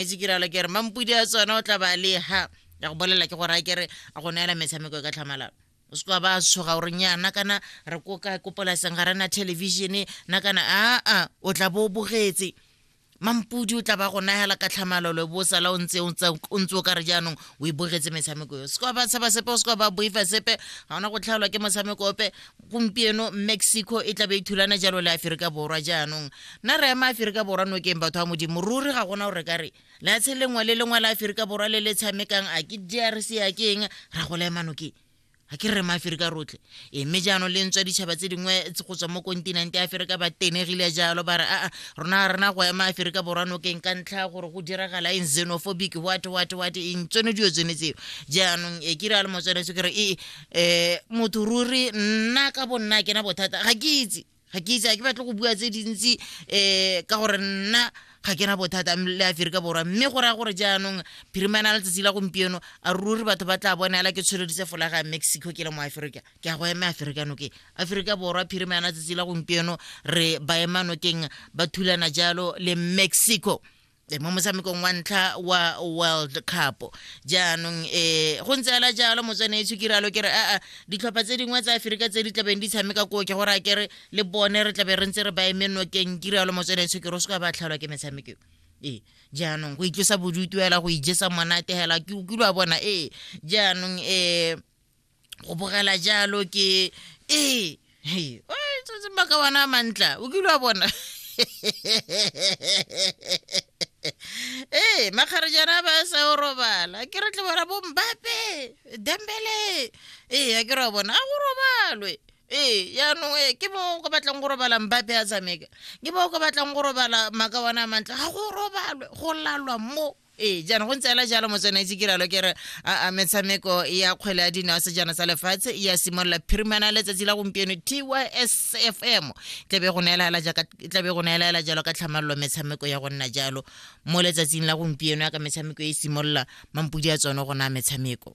etse ke ralo kere mampudi a tsona o tla ba le ha ya go bolela ke gore a kere a go neela metshameko e ka tlhamalalo o se ka ba tshoga gore nyana kana re ko ka ko polaseng ga rena television na kana aa o tla bo o bogetse mampudi o tla ba go nagela ka tlhamalolo bo sala o ntse o ntse o ka re jaanong o e bogetse metshameko yo se ka ba tshaba sepe o se ka ba boifa sepe ga ona go tlhaolwa ke motshameko ope gompieno mexico e tlabe e thulana jalo le aferika borwa jaanong nna re ema aferika borwa nokeng batho ba modimo ruri ga gona gore ka re leatshe lengwe le lengwe la aferika borwa le le tshamekang a ke drc a ke eng ra go la ema nokeng ga ke re maaferika rotlhe e mme jaanong le ntswa ditšhaba tse dingwe go tswa mo kontinente ya aferika ba tenegile jalo ba re aa rona ga rena go ema aferika borwa nokeng ka ntlha gore go diragala eng xenophobic what what what eng tsone dilo tsone tseo jaanong e ke re a le motswanetse ke re ee eh motho ruri nna ka bonna ke na bothata ga ke itse ga ke itse ga ke batle go bua tse dintsi eh ka gore nna ga ke na bothata le aferika borwa mme go raya gore jaanong phirimana la letsatsi la gompieno a ruri batho ba tla bonela ke tshweleditse folaga ya mexico ke le mo aferika ke a go eme aferika nokeng aferika borwa phirimana letsatsi la gompieno re baemanokeng ba thulana jalo le mexico e, mo motshamekong wa ntlha wa world cup jaanong um go ntse ela jalo motswane e tshukiralo ke re aa ditlhopha tse dingwe tsa aferika tse di tlabeng di tshameka koo ke gore a kere le bone re tlabe re ntse re ba eme nokeng kiralo motswane e tshukiro o se ka ba tlhalwa ke metshameko ee jaanong go itlosa bodutu fela go ijesa monate fela ke utlwa bona ee jaanong um go bogela jalo ke ee hey, baka wana mantla o kile wa bona ee makgarejana ba sa o robala ke re tle bona bombape dembele ee a ke re wa bona a go robalwe ee yaanong ee ke bo ko batlang go robala mbape a tshameka ke bo ko batlang go robala maka wana a mantle ga go robalwe go lalwa mo ee jaana go ntse ela jalo motswana itse ke ralo ke re a metshameko ya kgwele ya dino ya sejana sa lefatshe ya simolola phirimana letsatsi la gompieno tysfm tlabe go neelaelajaatlabe go neelaela jalo ka tlhamalelo metshameko ya go nna jalo mo letsatsing la gompieno ya ka metshameko e simolola mampodi a tsone go naya metshameko